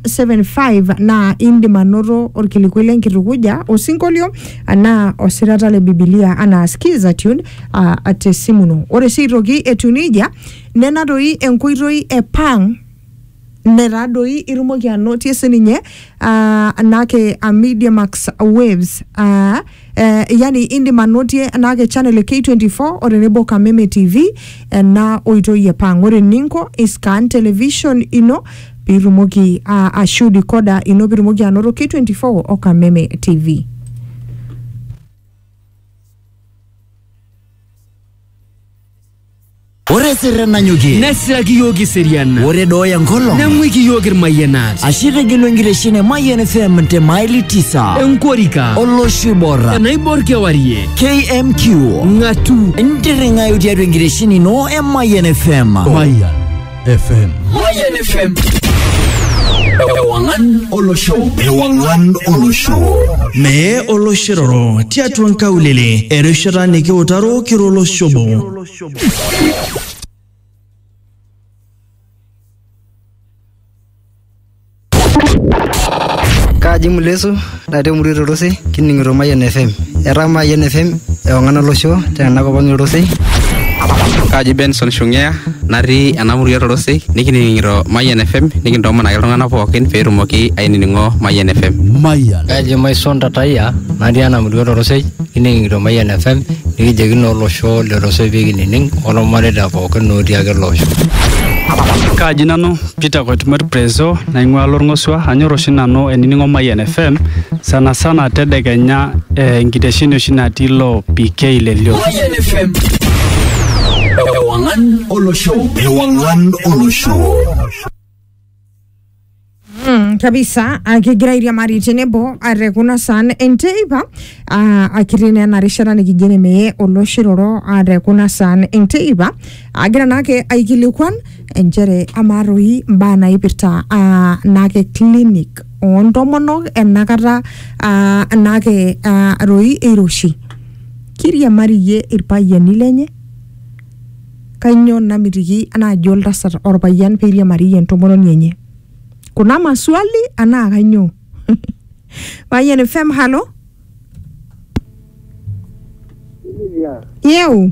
0775 naa indim anoto orkilikuai lenkitukuja osinkolio anaa osirata le bibilia anaa skiza tune uh, te simu ino ore sii aitoki etiu nejia nena doi enkoitoi e pang netaa doi itumoki anotie sininye uh, nake uh, media max waves uh, Eh, yani indim anotie enaake channel e K24 o tenebo Kameme TV ena oitoi e pang. Ore eninko iscan television ino piitumoki ah, ashu decoder ino piitumoki anoto K24 o Kameme TV. Ore sirren nanyokie. Nesiraki yiok iserian. Ore dooya nkolong. Neng'uiki yiok irmayianat. Ashe itegelu enkitesheni e Mayian FM te maili tisa. Enkorika. Olosho oiborra. Enaibor kewarie. KMQ. Ng'atu. Ntirring'ayu tiatua enkitesheni ino e Mayian FM. Mayian. FM. Mayan FM. Ewangan Olosho. Ewangan Olosho. Mee oloshiroro tiatua nkaulele erishata nikiutaro kira oloshobo. Kaji Mulesu natii emurua Torosei kining'ito Mayian FM. Etaa Mayian FM ewang'an olosho tena kop ang' Torosei. Kaji Benson Shungea natii ena murua Torosei nikining'ito Mayian FM nikintoomonaki iltung'anak pookin pee etumoki ainining'o Mayian FM. Mayian. Kaji Maison Tatayia natii ena murua Torosei kining'ito Mayian FM nikijoki naa olosho le Torosei pee kinining' olmareita pookin otii ake ele osho. Kaji nanu Peter Koitumor Prezo naing'ua Lorng'osua, anyor oshi nanu ainining'o Mayian FM sana sana tedekenya enkitesheni oshi natii ilo PK le Lio. Mayian FM. Ewang'an olosho. Ewang'an olosho. Mm, kabisa akigira airiamari tenebo are kuna saan enteipa ah, akiti naa ena rishata nikijo nemeye oloshiroro are kuna saan enteipa agira naake aikilikuan inchere amaa toi imbaa naipirta ah, naake clinic oontomonok enakata ah, naake ah, toi eiroshi kiriamari iyie irpayiani lenye kainyoo namitiki naaji oltasat orpayian peiriamari iyie entomononi enye kuna maswali anaa kainyoo payian fm halo Silvia, yeu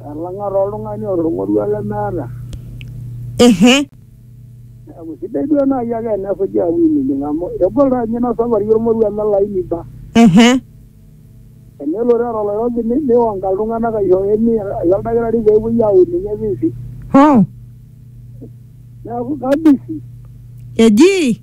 Elang'a taa oltung'ani oota olmoruo lemeeta. Ehe. Neeku sidai duo naaji ake enesuji aapuo ainining amu egol taa ninye ina safari olmoruo eme olaini ba. Ehe. Tenelo teeta oloirobi ni- nionga iltung'anak aishooyo emia aisho oldakitari peepuoi aun ninye visit. Hoo. Neeku kabisi. Eji.